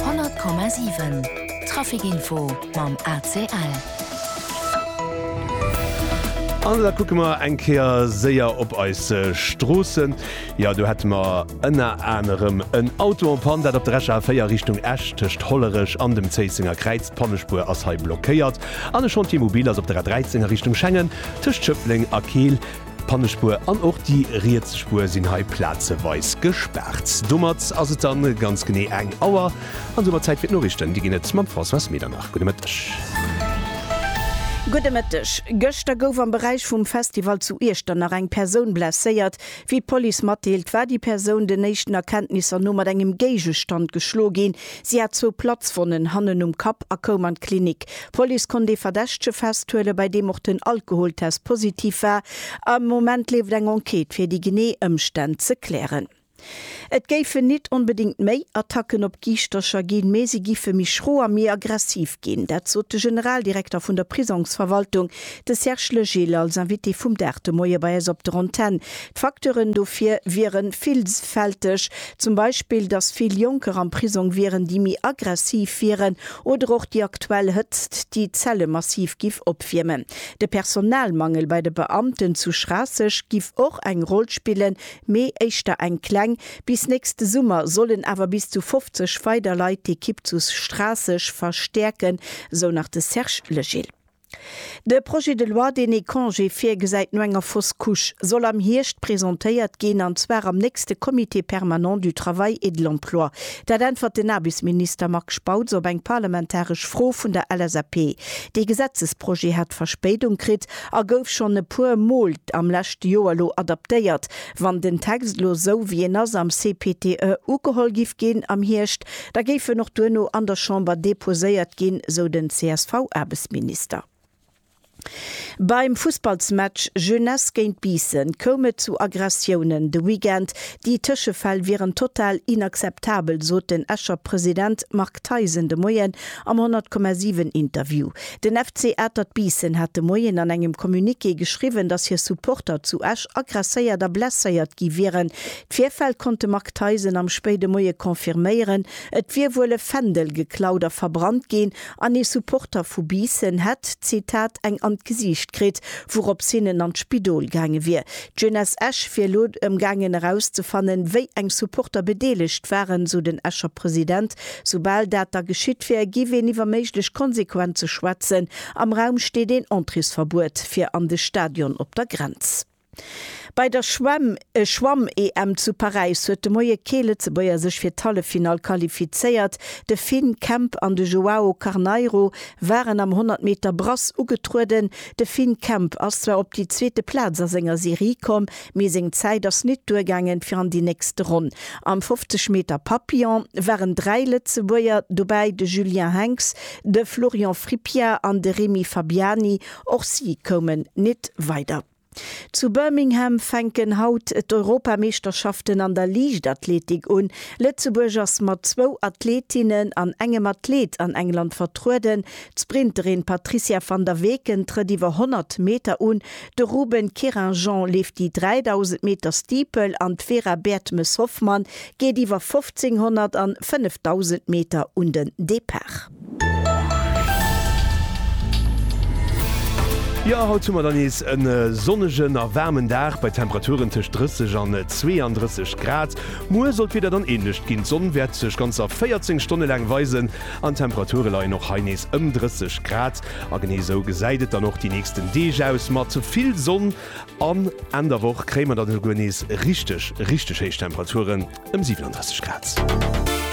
100,7 Trafic Info mam ACL. An da kucke mer eng Kéier séier op eis Stroossen. Jo, do hätte mer ënner anerem en Auto en panne, dat op der RECA 4 Richtung Esch tëscht Hollerech an dem Zéissenger Kräiz. D'Pannespuer ass hei blockéiert. An e Chantier mobil ass op der A 13 a Richtung Schengen tëscht Schëffleng a Keel. D'Pannespuer an och déi riets Spuer sinn hei plazeweis gespaart. Domat ass et dann ganz genee eng Auer an domat Zäit fir d'Noriichten. Déi ginn et mam Françoise Medernach. Gudde Mëtteg. Gudde Mëtteg. Gëschter gouf am Beräich vum Festival zu Iechternach eng Persoun blesséiert. Wéi d'Police matdeelt, war déi Persoun den éischten Erkenntnisser no mat engem Géigestand geschloe ginn, Si hat zwou Platzwonnen hannen um Kapp a koum an d'Klinik. D'Police konnt ee Verdächtege festhuelen, bei deem och den Alkoholtest positiv war. Am Moment leeft eng Enquête, fir déi genee Ëmstänn ze klären. Et géifen nit onbedéngt méi Attacken op Giischtercher ginn, mee si giffe méi schro a méi aggressiv ginn. Dat sot de Generaldirekter vun der Prisongsverwaltung, de Serge Legil, als Invité vum Dag de Moie bei eis op der Antenn. D'Facteuren dofir wiere villfälteg, zum Beispill, datt vill Jonker am Prisong wieren, déi méi aggressiv wieren, oder och déi aktuell Hëtzt, déi d'Zelle massiv giff opwiermen. De Personalmangel bei de Beamten zu Schraasseg giff och eng Roll spillen, mee éischter eng kleng. Bis nächste Summer sollen awer bis zu 50 weider Leit d'Ekipp zu Schraasseg verstäerken, sou nach de Serge Legil. De Projet de loi, deen ee Congé virgesäit no enger Fausse Couche, soll am Hierscht presentéiert ginn, an zwar am nächste Comité permanent du travail et de l'emploi. Dat äntwert den Aarbechtsminister Marc Spautz op eng parlamentaresch Fro vun der LSAP. Dee Gesetzesprojet hat Verspéidung kritt a gouf schonn e puer Mol am leschte Joer elo adaptéiert. Wann den Text elo esou wéi en ass am CPTE ugeholl giff ginn am Hierscht, da géif en och duerno an der Chamber deposéiert ginn, sou den CSV-Aarbechtsminister. Beim Fussballsmatch Jeunesse géint Biissen koum et zu Aggressiounen de Weekend. Déi Tëschefäll wieren total inakzeptabel, sot den Escher President Marc Theisen de Moien am 100,7 Interview. Den FC Atert Biissen hat de Moien an engem Communiqué geschriwwen, datt hir Supporter zu Esch aggresséiert a blesséiert gi wieren. D'Virfäll konnt de Marc Theisen am spéide Moie confirméieren. Et wier wuel e Fändel geklaut a verbrannt ginn an ee Supporter vu Biissen hätt, Zitat, eng an d'Gesiicht kritt, wourops hien en an d'Spidol gaange wier. D'Jeunesse Esch wier elo ëm gaangen erauszefannen, wéi eng Supporter bedeelegt waren, sou den Escher President. Soubal dat da geschitt wär, giff een iwwer méiglech Konsequenze schwätzen. Am Raum steet een Entréesverbuet fir an de Stadion op der Grenz. Bei der Schwemm Schwamm-EM zu Paräis huet de Moie kee Lëtzebuerger sech fir d'Halleffinall qualifizéiert. De Finn Kemp an de Joao Carneiro waren am 100 Meter Brass ugetrueden. De Finn Kemp ass zwar op déi zweete Plaz a senger Serie komm, Mee seng Zäit ass nit duergaangen fir an déi nächste Ronn. Am 50 Meter Papillon waren dräi Lëtzebuerger dobäi, de Julien Henx, de Florian Frippiart an de Remy Fabiani. Och si koumen nit weider. Zu Birmingham fänken haut d'Europameeschterschaften an der Liichtathletik un. Lëtzebuerg ass mat zwou Athletinnen an engem Athlet an England vertrueden. D'Sprinterin Patricia Van der Weken trëtt iwwer 100 Meter un. De Ruben Querinjean leeft déi 3.000 Meter Steeple an d'Vera Bertemes-Hoffmann geet iwwer 1.500 an 5.000 Meter un den Depart. Jo, haut hu mer dann nees e sonnegen a waarmen Dag bei Temperaturen tëscht 30 an 32 Grad. Muer soll d'Wieder dann änlecht ginn, d'Sonn wäert sech ganzer 14 Stonne laang weisen an d'Temperature leien och hei nees ëm 30 Grad. A genee esou gesäit et dann och déi nächsten Deeg aus, mat vill Sonn an Enn der Woch kréie mer dann esouguer nees richteg, richteg héich Temperaturen, ëm 37 Grad.